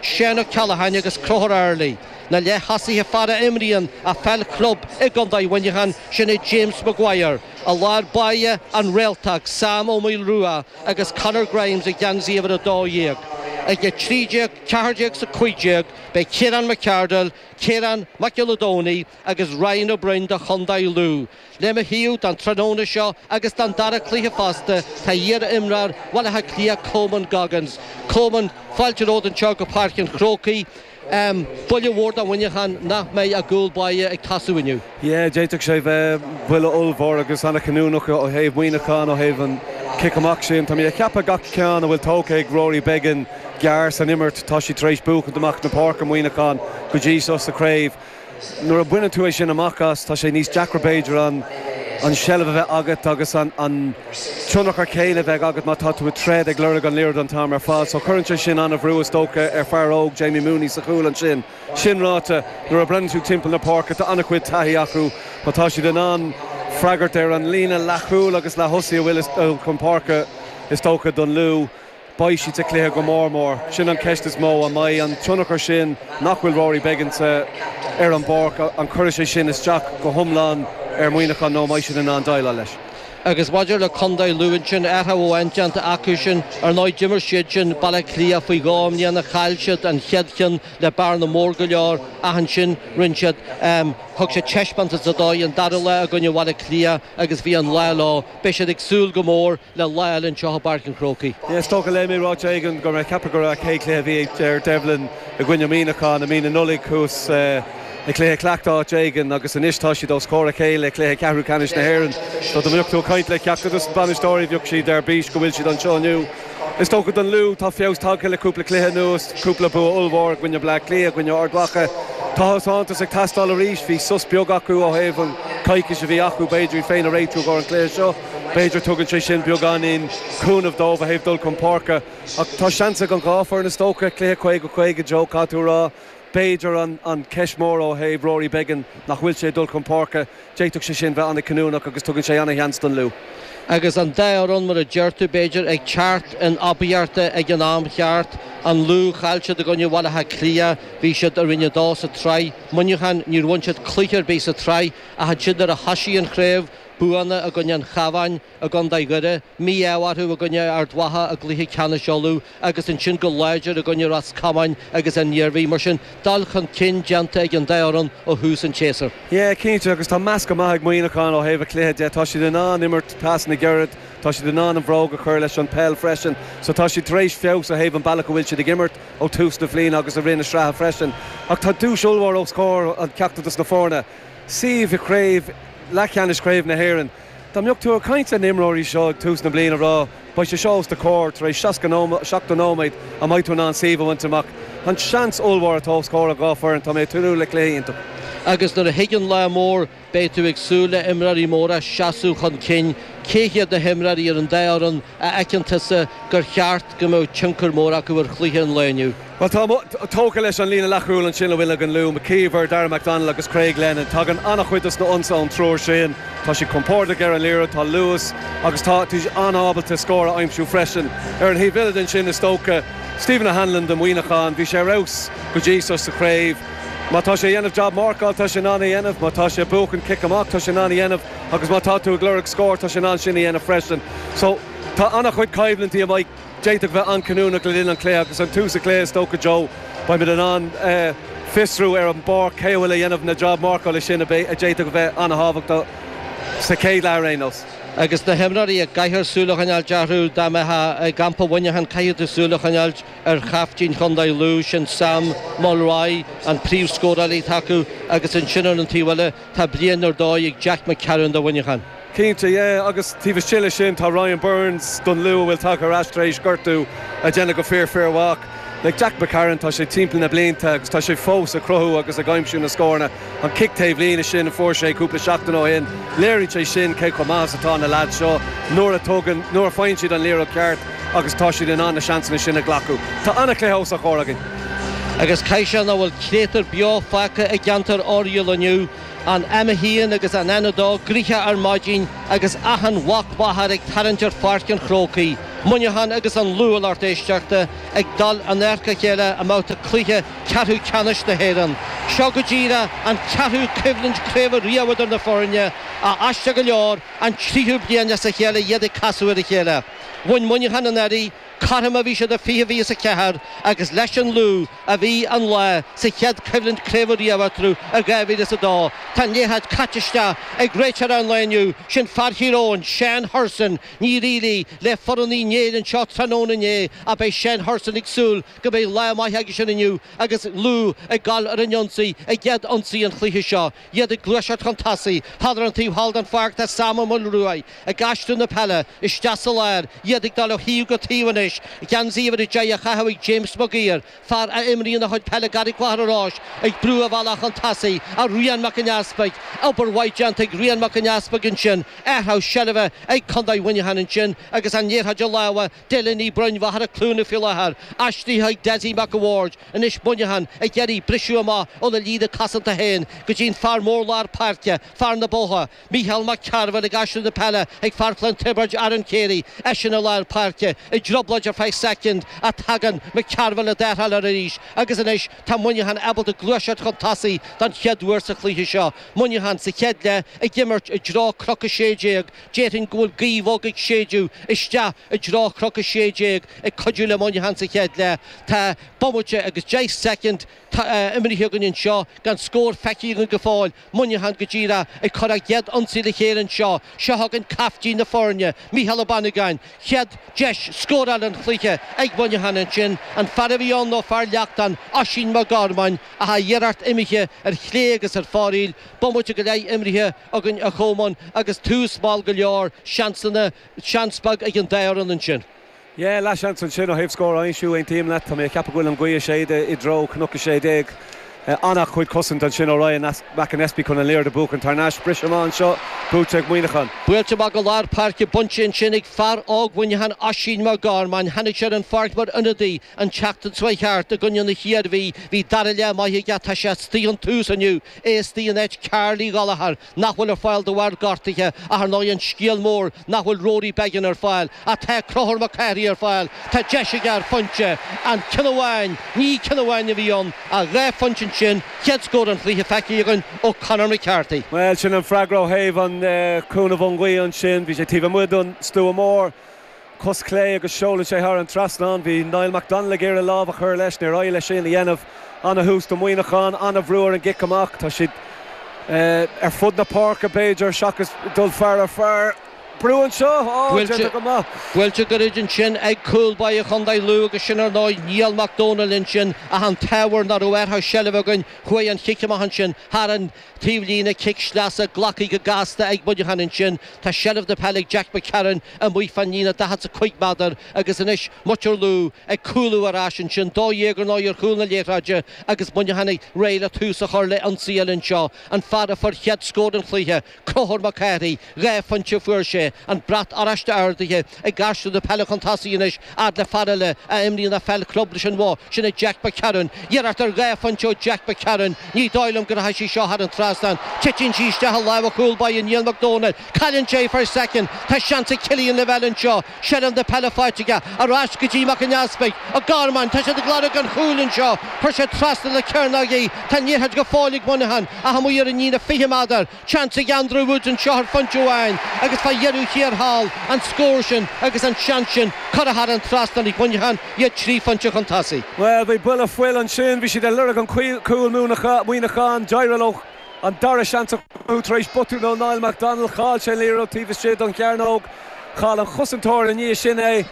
Seán Ó Ceallacháin agus Conchúr Early, na leath-thosaithe, fear a imríonn a pheil chlub i gContae Mhuineacháin, sin é James Maguire i lár báire, an réaltóg, Sam Ó Maolrua agus Conor Grimes i geansaí uimhir 12. Ag 13, 14 is 15 beidh Ciarán McArdle, Ciarán Mac Giolla Domhnaigh agus Ryan Ó Broin do Chontae Lú. Le mo thaobh don tráthnóna seo agus don dara cluiche fosta tá iar-imreoir Bhaile Átha Cliath Coman Goggins. Coman, fáilte romhat anseo go Páirc an Chrócaigh. Buille mhór do Mhuineachán nach mbeidh a gcúl báire ag tosú inniu. Yeah, d'fhéadfadh sé bheith buille ollmhór agus an-chinniúnach ó thaobh Mhuineachán, ó thaobh an chic amach sin. Tá mé ag ceapadh gach ceann a bhfuil tógtha ag Rory Beggan gearr san imirt, tá siad tar éis buachaint amach na páirce, Muineachán, go dtí seo sa chraobh. Nuair a baineann tú é sin amach as, tá sé níos deacra, b'fhéidir, an seilbh a bheith agat agus an tionchar céanna a bheith agat má tá tú ag troid ag lorg an liathróid an t-am ar fad. So cuireann sé sin an-bhrú, is dócha, ar fear óg Jamie Mooney sa chúl ansin. Sin ráite, nuair a bhreathnaíonn tú timpeall na páirce, tá an-chuid taithí acu. Má tá siad in ann freagairt ar an líne leathchúil agus leath-thosaí a bhfuil chun páirce, is dócha, don Lú, Beidh siad sa chluiche go mór mór, sin an cheist is mó, an mbeidh an tionchar sin nach bhfuil Rory Beggan ar an bpáirc, an cuirfidh sé sin isteach go hiomlán ar Mhuineachán nó an mbeidh siad in ann déileáil leis? Agus maidir le contae Lú ansin, athrú amháin déanta acusan. Ar ndóigh d'imir siad sin Baile Átha Cliath faoi dhó i mbliana, chaill siad an chéad cheann le bearna mór go leor ach ansin rinne siad, thug siad taispeántas ar dóigh an dara lá i gcoinne Bhaile Átha Cliath agus bhí an lá leo. Beidh siad ag súil go mór. le lá eile anseo i bPáirc an Chrócaigh. Is dócha, léigh mé ráiteas éigin go raibh mé ag ceapadh go raibh an chéad chluiche a bhí ag Ger Devlin i gcoinne Muineachán i mí na Nollaig thuas i cluiche cleachta áit éigin agus anois tá siad os comhair a chéile i cluiche ceathrú ceannais na hÉireann. So dá mbeadh tú ag caint le ceachtar dos na bainisteoirí bheadh siad ar bís go bhfuil siad anseo inniu. Is dócha don Lú tá feabhas tagtha le cúpla cluiche anuas, cúpla bua ollmhór i gcoinne Bleá Cliath, i gcoinne Ard Mhacha. Tá taispeántas ag teastáil arís, bhí sos beag acu ó thaobh an coicís a bhí acu, b'fhéidir, iad féin a réitiú i gcomhair an cluiche seo. B'fhéidir tugann sé sin beagáinín cúnaimh dóibh ó thaobh dul chun páirce. Ach tá seans ag an dhá foireann is dócha. Cluiche caoga caoga, you know, caithfidh tú a rá. B'fhéidir an cheist mhór ó thaobh Rory Beggan, nach bhfuil sé ag dul chun páirce, d'fhéadfadh sé sin bheith an-chinniúnach agus tugann sé an-sheans don Lú. Agus an dá fhoireann, mar a deir tú, b'fhéidir, ag teacht in aibíochta ag an am cheart, an Lú, chaill siad i gcoinne Bhaile Átha Cliath, bhí siad i Roinn a Dó sa tsraith. Muineachán, níor bhain siad cluiche ar bith sa tsraith ach ansin nuair a thosaigh an chraobh, buanna i gcoinne an Chabháin i gcontae Dhoire, mí-ádh orthu i gcoinne Ard Mhacha i gcluiche ceannais Uladh agus ansin go láidir i gcoinne Ros Comáin agus an Iarmhí. Mar sin, dul chun cinn déanta ag an dá fhoireann ó thús an tséasúir. Yeah, cinnte agus tá meascadh maith ag Muineachán ó thaobh a cluiche de. Tá siad in ann imirt trasna gairid, tá siad in ann an bhróg a chur leis an peil freisin. So tá siad tar éis feabhas ó thaobh an bealach a bhfuil siad ag imirt ó tús na bhliana agus i rith na sraithe freisin. Ach tá duais ollmhór os comhair an ceachtar dos na foirne. suíomh i gcraobh leathcheannais Chraobh na hÉireann. Dá mbeadh tú ag caint le na imreoirí seo ag tús na bliana a rá beidh sé seo os do comhair tar éis 70 nóiméad an mbeidh tú in ann suíomh a bhaint amach. An seans ollmhór atá os comhair an dhá foireann tá mé ag tnúth le cluiche iontach. Agus nuair a thig an lá mór beidh tú ag súil le imreoirí móra seasamh chun cinn. Cé hiad na himreoirí ar an dá fhoireann a fheiceann tusa gur cheart go mbeadh tionchar mór acu ar chluiche an lae inniu? Bhuel, tá mé tógtha leis an líne leathchúil ansin a bhfuil ag an Lú, McKeever, Dara McDonnell agus Craig Lennon. Tagann an-chuid dos na ionsaithe ón triúr sin. Tá siad compordach ar an liathróid, tá luas agus tá siad an-ábalta scór a aimsiú freisin. Ar an thaobh eile den sin, is dócha, Stephen O'Hanlon do Mhuineachán, bhí sé ar fheabhas go dtí seo sa chraobh. Má tá sé a dhéanamh jab marcáil, tá sé in ann é dhéanamh. Má tá sé a buachan cic amach, tá sé in ann é dhéanamh. Agus má tá tú ag lorg scóir, tá sé in ann sin a dhéanamh freisin. So, tá an-chuid coimhlintí a mbeidh, d'fhéadfadh bheith an-chinniúnach le linn an chluiche agus an tús an chluiche is dócha Joe, beimid in ann fiosrú ar an bpáirc cé a bhfuil a dhéanamh na jab marcála sin a d'fhéadfadh a bheith an-thábhachtach sa chéad leath ar aon nós. Agus na himreoirí a gcaithfear súil a choinneáil orthu, dá mbeithfeá i gcampa Mhuineacháin chaithfeadh tú súil a choinneáil ar chaiftín chontae Lú, sin Sam Mulroy, an príomhscórálaí atá acu agus ansin ar an taobh eile, Tá bliain ar dóigh ag Jack McCarron do Mhuineachán. Cinnte, yeah, agus taobh istigh leis sin, tá Ryan Burns don Lú a bhfuil tagtha ar ais tar éis gortú ag déanamh go fíor fíor mhaith. Like, Jack McCarron, tá sé timpeall na blianta agus tá sé fós ag cruthú agus ag aimsiú na scóranna. An cic taobh líne sin a fuair sé cúpla seachtain ó shin, léiríonn sé sin cé chomh maith is atá na leaids seo nuair a tugann, nuair a faigheann siad an liathróid cheart agus tá siad in ann na seansanna sin a ghlacadh. Tá an-chluiche os ár chomhair againn. Agus ceist an bhfuil créatúr beo fágtha i gceantar Oiriall inniu, an M1 agus an N2 gnoitheach ar maidin agus achan mhac máthar ag tarraingt ar Pháirc an Chrócaigh, Muineachán agus an Lú, a lucht éisteachta, ag dul in adharca a chéile i mbabhta cluiche ceathrú ceannais na hÉireann, seo go díreach an ceathrú coimhlint craoibhe riamh idir na foirne, a aisteach go leor, an tríú bliain as a chéile iad ag casadh ar a chéile. Bhain Muineachán anuraidh. Cothrom a bhí sé do 20 20 is a ceathair agus leis an Lú a bhí an lá sa chéad choimhlint craoibhe riamh eatarthu i 2000 is a dó. Tá an liathróid caite isteach ag réiteoir an lae inniu, sin fear Thír Eoghain, Seán Hurson. Níor éirigh le foireann Uí Néill anseo tráthnóna inné ach beidh Seán Hurson ag súil go mbeidh lá maith aigesean inniu agus Lú ag dul ar an ionsaí i gcéad ionsaí an chluiche seo. Iad ag gluaiseacht chun tosaigh. Thall ar an taobh thall den pháirc tá Sam Ó Maolruaidh ag aistriú na peile isteach sa lár. Iad ag dul ó thaobh go taobh anois. Geansaí uimhir a deich á chaitheamh ag James Mag Uidhir, fear a imríonn a chuid peile i gCarraig Mhachaire Rois, ag brú a bhealach chun tosaigh ar Rian Mac an Easpaig. Obair mhaith déanta ag Rian Mac an Easpaig ansin. Athrú seilbhe ag Condae Mhuineacháin ansin agus an liathróid i lámha. Dylan Uí Bhroin Mhachaire Cluana faoi láthair, aistrithe ag Dessie Mac a' Bhaird, anois Muineachán ag iarraidh briseadh amach óna líne cosanta féin go dtí an fear mór lár páirce, fear na Botha, Mícheál Mac Cearbhaill ag aistriú na peile ag fear Chluain Tiobraid Aaron Carey, eisean i lár páirce, i dtrioblóid ar feadh soicind ach tagann Mac Cearbhaill le tarrtháil air arís agus anois tá Muineachán ábalta gluaiseacht chun tosaigh don chéad uair sa chluiche seo. Muineachán sa chéad leath ag imirt i dtreo Chnoc a sé déag, Déarfainn go bhfuil gaoth bhog ag séideadh isteach i dtreo Chnoc 16 ag cuidiú le Muineachán sa chéad leath. Tá bomaite agus deich soicind imithe againn anseo gan scór feicthe againn go fóill, Muineachán go díreach ag cur a gcéad ionsaí le chéile anseo. Seo chugainn caiftín na foirne, Mícheál Ó Banagáin. Chéad deis scórála an chluiche ag Muineachán ansin, an fear a bhí ann nó fear Leachtain, Oisín Mac Gormáin, ach a iarracht imithe ar chlé agus ar fóraoil, bomaite go leith imithe. againn, a Cholmáin, agus tús mall go leor, seansanna, seans beag ag an dá fhoireann ansin. Yeah, leathsheans ansin ó thaobh scór a aimsiú, aontaím leat. Tá mé ag ceapadh go bhfuil an ghaoth ag séideadh i dtreo Chnoc 16. An-chuid cosaint ansin ó Ryan McAnespie chun an liathróid a bhuachan thar n-ais. Briseadh amach anseo, buaite ag Muineachán. Buailte amach go lár páirce bainte ansin ag fear óg Mhuineacháin, Oisín Mac Gormáin. Tháinig sé ar an pháirc mar ionadaí an tseachtain seo a chuaigh thart i gcoinne na hIarmhí. Bhí dara leath maith aige, tá sé astoigh ón tús inniu. Isteach in áit Karl Uí Ghallchóir nach bhfuil ar fáil de bharr gortaithe ach ar ndóigh an scéal mór nach bhfuil Rory Beggan ar fáil. Ach tá Conchúr Mac Cárthaigh ar fáil, tá deis aige ar phointe. An ceann amháin, ní ceann amháin a bhí ann ach dhá phointe ansin, chéad scór an chluiche feicthe againn ó Conor McCarthy. Bhuel, sin an freagra ó thaobh an chúnamh ón ngaoth ansin. Bhí sé taobh amuigh den stua mór. cos chlé agus seolann sé thar an trasnán. Bhí Niall McDonnell ag iarraidh lámh a chur leis, níor éirigh leis sin a dhéanamh. Ana-thús do Mhuineachán, ana-bhrú ar an gcic amach. Tá siad ar fud na páirce, b'fhéidir, seachas dul fear ar fear. Brú anseo, á, déanta go maith. Buailte gairid ansin ag cúl báire chontae Lú agus sin, ar ndóigh, Niall McDonnell ansin ach an t-ábhar ná raibh air. Tá seilbh againn. Chuaigh an cic amach ansin thar an. Taobh líne, cic sleasa, glactha go gasta ag Muineachán ansin, tá seilbh na peile ag Jack McCarron, amuigh fán líne 45 méadar, agus anois muintir Lú ag cúlú ar ais ansin, 12 ar ndóigh ar chúl na liathróide agus Muineachán réidh le tús a chur le ionsaí eile anseo, an fear a fuair chéad scór an chluiche, Conchúr Mac Cárthaigh, Dhá phointe a fuair sé. An brat oráiste ardaithe ag garsún na peile chun tosaigh anois, fhad le fear eile a imríonn a pheil club leis an Bhoth. Sin é Jack McCarron. Iarracht ar dhá phointe ó Jack McCarron. Ní dóigh liom go rachaidh sí seo thar an trasnán. Titeann sí isteach i lámha an chúl báire Niall McDonnell. Cailleann sé í faoi soicind. Tá seans ag Killian Lavelle anseo. Seilbh na peile faighte aige. Ar ais go dtí McAnespie. McGorman. Tá siad ag lorg an chúil anseo. Chuir sé trasna na cearnóige. Tá an liathróid go fóill ag Muineachán. Ach amuigh ar an líne 20 meadar. Seans ag Andrew Woods anseo ar phointe amháin agus fá dheireadh thiar thall, an scór sin agus an seans sin curtha thar an trasnán ag Muineachán, iad trí phointe chun tosaigh. Bhuel, bhí boladh fuil ansin, bhí siad ag lorg an chúil Muineachán, d'éirigh leo an dara seans a chruthú tar éis botún ó Niall McDonnell, chaill sé an liathróid taobh istigh don chearnóg, chaill an chosantóir ina dhiaidh sin é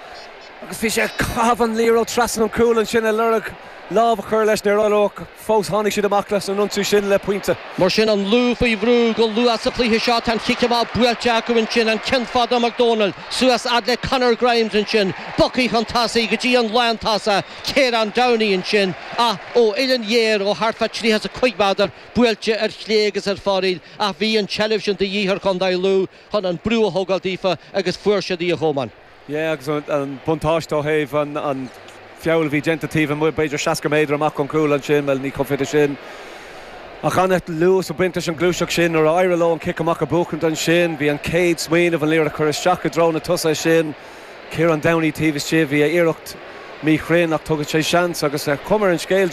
agus bhí sé ag caitheamh an liathróid trasna an chúil ansin ag lorg lámh a chur leis, níor éirigh leo. Fós tháinig siad amach as an ionsaí sin le pointe. Mar sin, an Lú faoi bhrú go luath sa chluiche seo. Tá an chic amach buailte acu ansin, an ceann fada ó McDonnell, suas fhad le Conor Grimes ansin, bogtha chun tosaigh go dtí an lántosach Ciarán Downey ansin ach ó uillinn ghéar ó thart fá 35 meadar, buailte ar chlé agus ar fóraoil ach bhí an tseilbh sin de dhíth ar chontae Lú chun an brú a thógáil daofa agus fuair siad í a Chomáin. Yeah agus an buntáiste ó thaobh an feall a bhí déanta taobh amuigh b'fhéidir seasca méadar amach ón chúl ansin bhuel ní chomh fada sin ach an-luas ag baint leis an gluaiseacht sin nuair a éirigh leo an cic amach a bhuachaint ansin bhí an chéad smaoineamh an liathróid a chur isteach i dtreo na tosaithe sin Ciarán Downey taobh istigh bhí a iarracht míchruinn ach tugann sé seans agus an chuma ar an scéal